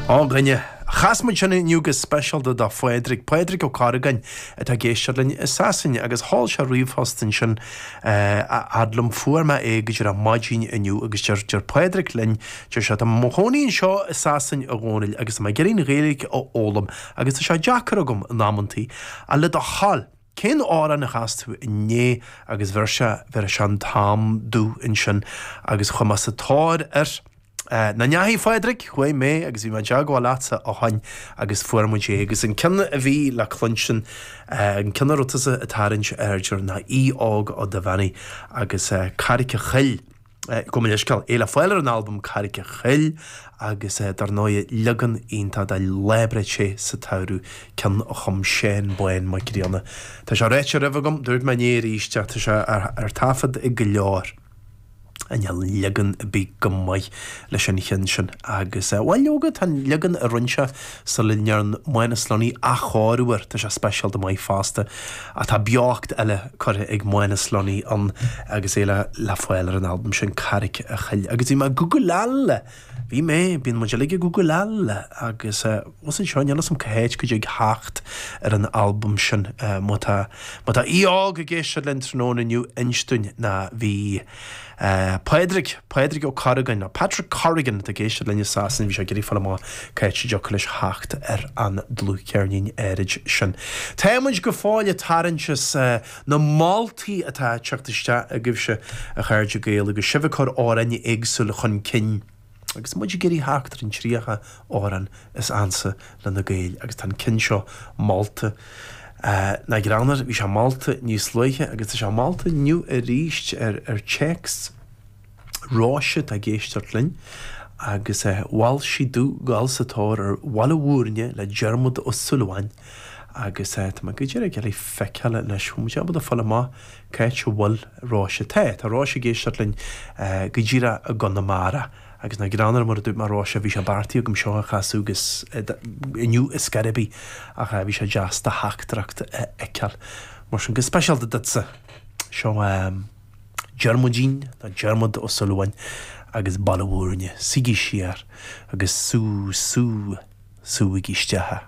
Ó a dhuine, chas muid sin inniu go speisialta do Phádraig, Pádraig Ó Corragáin atá ag éisteacht linn i Sasain agus sheol sé ríomhphost ansin a fhad liom fuair mé é go díreach maidin inniu agus deir, deir Pádraig linn, deir sé tá mé mo chónaí anseo i Sasain a Dhónaill agus tá mé ag iarraidh an Ghaeilge a fhoghlaim agus tá sé deacair agam in amanntaí, ach le do thoil. Cén amhrán a chas tú inné agus bheir sé, bheir sé an t-am domh ansin agus chuaigh mé sa tóir ar na nótaí, a Phádraig, chuaigh mé agus bhí mé i dteagmháil leatsa ó shin agus fuair muid é agus an ceann a bhí le cluinstin, an ceann a raibh tusa ag tarraingt aird air ná Aodh Óg Ó Duibheannaigh agus Carraic an Choill. Gabh mo leithscéal. É le fáil ar an albam Carraic a' Choill agus dar ndóigh leagan iontach de Lá Breá Te sa tSamhradh, ceann a chum Seán Bán Mac Grianna. Tá sé ráite roimhe agam, dúirt mé inné arís ach tá sé ar taifead ag go leor, an leagan a bhí go maith leis an cheann sin agus bhuel leoga tá an leagan a rinne sé, Sula ndearn Manus Lunny athchóiriú air, tá sé speisialta maith fosta, ach tá beocht eile curtha ag Manus Lunny ann agus é le fáil ar an albam sin, Carraic a' Choill. Agus bhí mé ag gúgláil, bhí mé, bíonn muid uilig ag gúgláil, agus más anseo níl a fhios agam cá háit a dtig a theacht ar an albam sin, má tá, má tá Aodh Óg ag éisteacht linn tráthnóna inniu, inis dúinn nó bhí. Pádraig, Pádraig Ó Corragáin, nó Patrick Corrigan atá ag éisteacht linn i Sasain, bhí sé ag iarraidh fáil amach cá háit a dtiocfadh leis theacht ar an dlúthcheirnín áirid sin. Tá muid go fóill ag tarraingt as na moltaí atá ag teacht isteach agaibhse, a chairde Gael, agus sibh ag cur amhráin éagsúla chun cinn. Agus muid ag iarraidh theacht ar an tríocha amhrán is ansa le na Gaeil agus tá an ceann seo molta nach greannmhar, bhí sé molta níos luaithe agus tá sé molta inniu arís ar téacs Róise atá ag éisteacht linn agus mhol sí domh dul sa tóir ar Bhaile Mhúirne le Diarmuid Ó Súilleabháin agus tá mé go díreach ag gabháil a fheiceáil anois bhfuil muid ábalta fáil amach Cá háit a bhfuil Róise, tá. Tá Róise ag éisteacht linn go díreach i gConamara. Agus nach greannmhar, mar a dúirt mé, Róise, bhí sé beartaithe agam seo a chasadh inniu ar scor ar bith ach bhí sé deas do theachtaireacht a fheiceáil. Mar sin, go speisialta duitse, seo Diarmuidín, nó Diarmuid, Ó Súilleabháin agus Baile Mhúirne. Suígí siar agus sú, sú, súigí isteach.